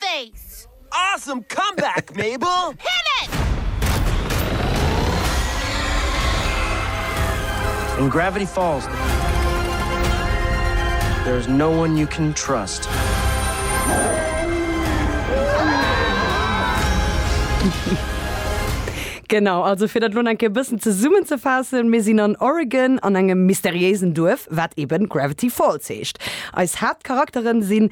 Space! Awesome comeback, Mabel! Hit it! In Gravity Falls, there is no one you can trust. Genau, also fir dat elo nach eng Kéier e bëssen zesummenzefaassen, Mir sinn an Oregon an engem mysteriéisen Duerf, wat eben Gravity Falls heescht. Eis Haaptcharakteren sinn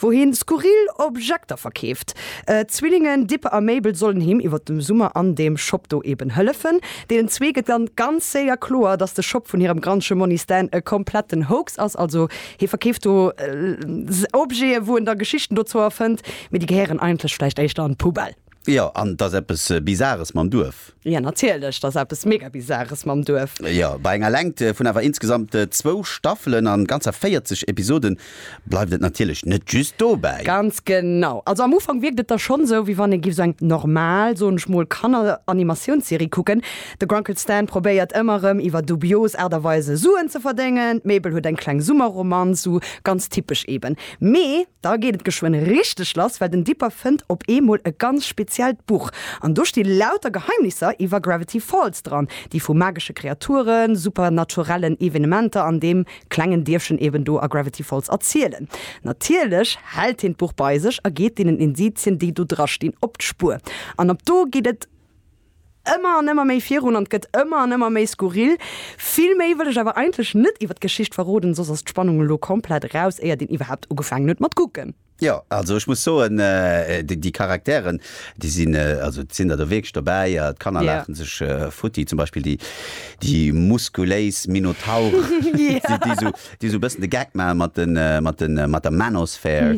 wou hien skurril Objekter verkeeft. D'Zwillingen Dippe a Mabel sollen him iwwer dem Summer an deem Shop do eben hëllefen. Deenen zwee gëtt dann ganz séier kloer, dass de Shop vun hirem Grandche Monni Stan e kompletten Hoax ass. Also hie verkeeft do Objeten, wou en da Geschichten dozou erfënnt, mee déi gehéieren eigentlech vläicht éischter an d'Poubelle. Jo, an 't ass eppes Bizares mam Duerf. Jo, natierlech, 't ass eppes mega Bizares mam Duerf. Jo, bei enger Längt vun awer insgesamt zwou Staffelen an ganzer 40 Episoden bleift et natierlech net just dobäi. Ganz genau. Also am Ufank wierkt et da schonn esou, wéi wann ee giff esou eng normal, soen ech mol, Kanner-Animatiounsserie kucken. De Grunkle Stan probéiert ëmmer erëm iwwer dubios Aart a Weise Suen ze verdéngen, d'Mabel huet eng kleng Summerromanz, esou ganz typesch eben. Mee da geet et geschwënn richteg lass, well den Dipper fënnt op eemol e ganz speziellt Buch. An do sti lauter Geheimnisser iwwer Gravity Falls dran, déi vu magesche Kreaturen, supernaturellen Evenementer an deem klengen Dierfchen eben do a Gravity Falls erzielen. Natierlech hält hien d'Buch bei sech a geet deenen Indizien, déi do dra stinn, op d'Spuer. An ab do geet et. ëmmer an ëmmer méi virun an gëtt ëmmer an ëmmer méi skurril. Vill méi wëll ech awer eigentlech net iwwert d'Geschicht verroden, soss ass d'Spannung elo komplett eraus, éiert een iwwerhaapt ugefaangen huet mat kucken. Jo, also ech muss soen, déi Charakteren, déi sinn, also et sinn der do wierklech dobäi, d'Kanner laachen sech futti, zum Beispill déi muskuléis Minotaure, déi esou. déi esou e bëssen de Gag maache mat de, mat de, mat der Manosphere,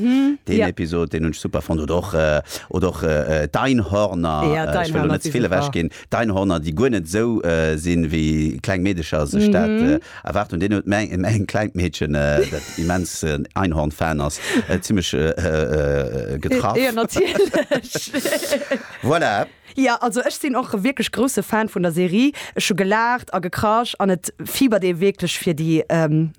deen Episod, deen hunn ech super fonnt. Oder och, oder och d'Einhorner, ech wëll elo net ze vill ewech ginn, d'Einhorner, déi guer net esou sinn, wéi kleng Meedecher sech dat erwaart hunn. Deen huet meng, mäin klengt Meedchen, dat immens en Einhorn-Fan ass, zimlech getraff. Voilà. Jo, also ech sinn och wierklech grousse Fan vun der Serie. Ech hu gelaacht a gekrasch an et fiebert ee wierklech fir déi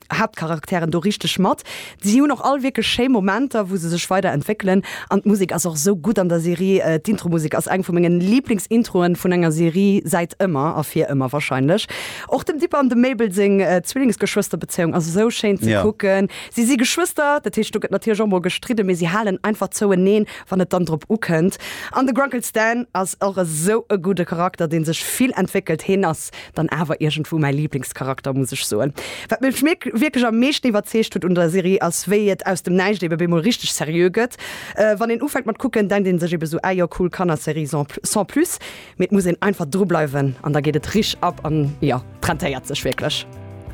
Haaptcharakteren do richteg mat. Si hunn och all wierklech schéi Momenter, wou se sech weider entwéckelen an d'Musek ass och esou gutt an der Serie. D'Intromusek ass eng vu mengen Liiblingsintroen vun enger Serie säit ëmmer a fir ëmmer warscheinlech. Och dem Dipper an dem Mabel seng Zwillingsgeschwësterbezéiung ass esou schéin ze kucken. Si si Geschwëster, dat heescht do gëtt natierlech och mol gestridde mee si halen einfach zoueneen wann et dann drop ukënnt, an de Grunkle Stan ass och esou e gudde Charakter, dee sech vill entwéckelt, heen ass dann awer iergendwou mäi Liblingscharakter, muss ech soen. Wat mech wierklech am meeschten iwwerzeegt huet un der Serie ass, wéi et aus dem Näischt ebe bemol richteg seriö gëtt. Wann een ufänkt mat kucken, denkt een sech ebe esou, ah jo, cool Kannerserie sans plus, mee et muss een einfach dru bleiwen an da geet et risch ab an jo, et rentéiert sech wierklech.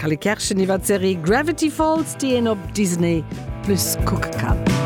Kalle Kerschen iwwer d'Serie Gravity Falls, déi een op Disney Plus kucke kann.